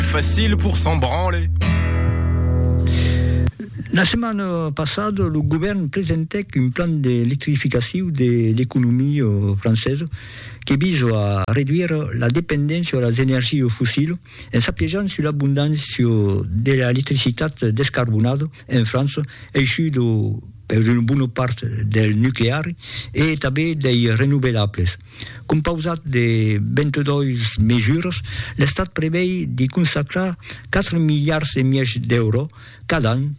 Facile pour s'en branler. La setmana passada, lo govèrn presentèc un plan d'electrificacion de l'economia francesa que visa a reduire la dependéncia a las energias fossilas en s'apiejant sus l'abondància de l'electricitat descarbonada en França, aishuda per una bona part del nucleari e tanben dei renovelables. Compausat de 22 mesuras, l'Estat prevei de consacrar 4 miliards e mièg d'èuro cada an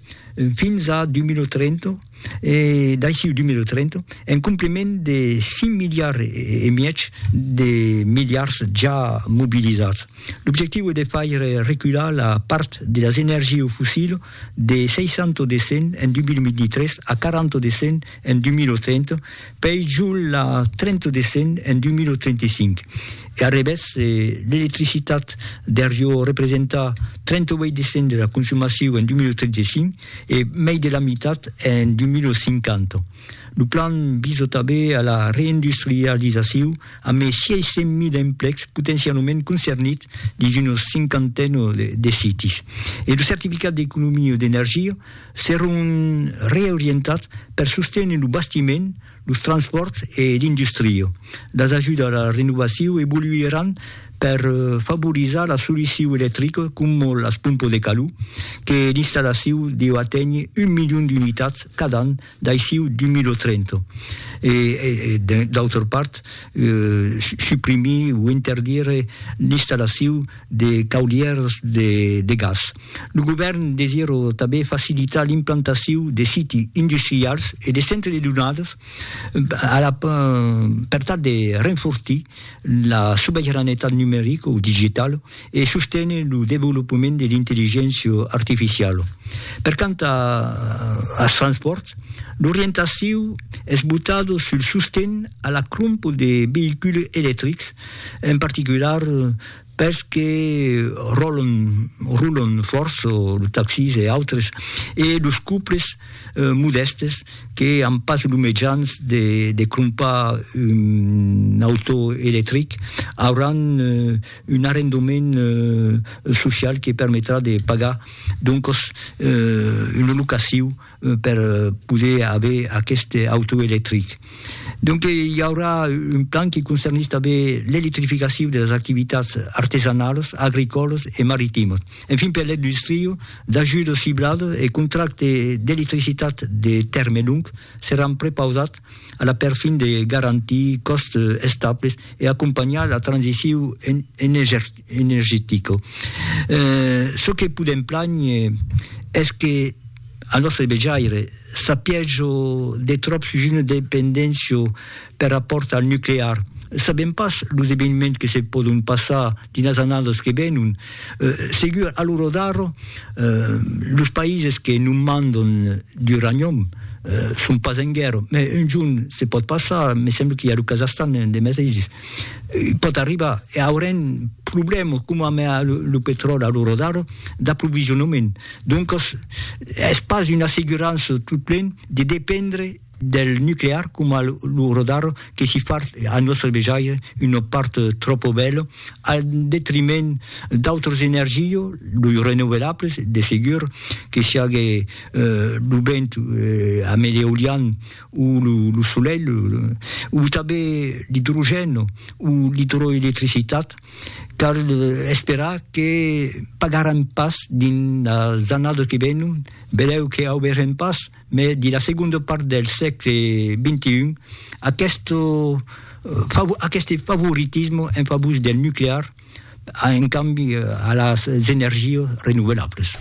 fins a 2030 e d'aicí 2030, en compliment de 5 miliards e mièg de miliards ja mobilizats. L'objectiu es de faire recular la part de las energies au fossile de 60 de cent en 2023 a 40 de cent en 2030, pei jo la 30 de cent en 2035. E a revés, se l'electricitat der jo representa 38 de cent de la consumacion en 2035 e mei de la mitat en 2050. Lo plan visa tanben a la reindustrializacion a mei 600.000 emplecs potencialament concernits dins una cinquantena de sites. E lo certificat d'economia d'energia seront reorientats per sostenir lo bastiment, los transpòrts e l'industria. Las ajudas a la renovacion evoluiràn per favorizar la solucion electrica coma las pompas de calor, que l'installacion deu aténher un milion d'unitats cada an D'aixiu d'un milo trento. E, d'autra part, suprimir o interdire l'installaciu de caudièrs de gas. Lo govèrn desirò tanben facilitar l'implantaciu de siti industrials e de centres de donadas per tal de renfortir La sobeiranetat numerica o digitala e sostene lo devolopament de l'intelligéncia artificiala. Per quant als transpòrts, l'orientaciu es botada sul sosten a la crompa de veïculs electrics, en particular pels que ròlon, rulon fòrt, los taxis e autres, e los couples modèstes que an pas los mejans de de crompar un auto electric, auràn un arrendament social que permetrà de pagar doncos una locaciu, per poder aver aqueste auto electric. Donque i aurà un plan qui concernís tanben l'electrificacion de las activitats artesanalas, agricòlas e maritimas. Enfin per l'industria, d'ajudas cibladas e contractes d'electricitat de tèrme long seràn prepausats a la perfin de garantir còstes estables e acompanhar la transicion energetica. energetica. Çò que podèm plànher es que al nòstre vejaire s'a pièja de tròp sus una dependéncia per rapòrt al nuclear. Sabèm pas los eveniments que se pòdon passar dins las annadas que venon. Segur, a l'ora d'ara, los païses que non mandan d'uranium son pas en guèrra, mai un jorn se pòt passar, me sembla qu'i a lo Kazahstan de meteis. pòt arribar e aurem problèmas coma amb lo petròli a l'ora d'ara d'aprovisionament. Doncas, es pas una assegurança tot plen de dependre del nuclear coma a l'ora d'ara que si fa al nòstre vejaire una part tròpa bèla al detriment d'autras energias, los renovelables de segur, que siágue lo vent, amb l'eolian ou lo solelh, ou tanben l'idrogèn ou l'idroelectricitat, cal esperar que pagarem pas dins las annadas que venon, benlèu que auberem pas, mai dins la segonda part del sègle xxi, aqueste aqueste favoritisme en favor del nuclear, en cambi a las energias renovelables.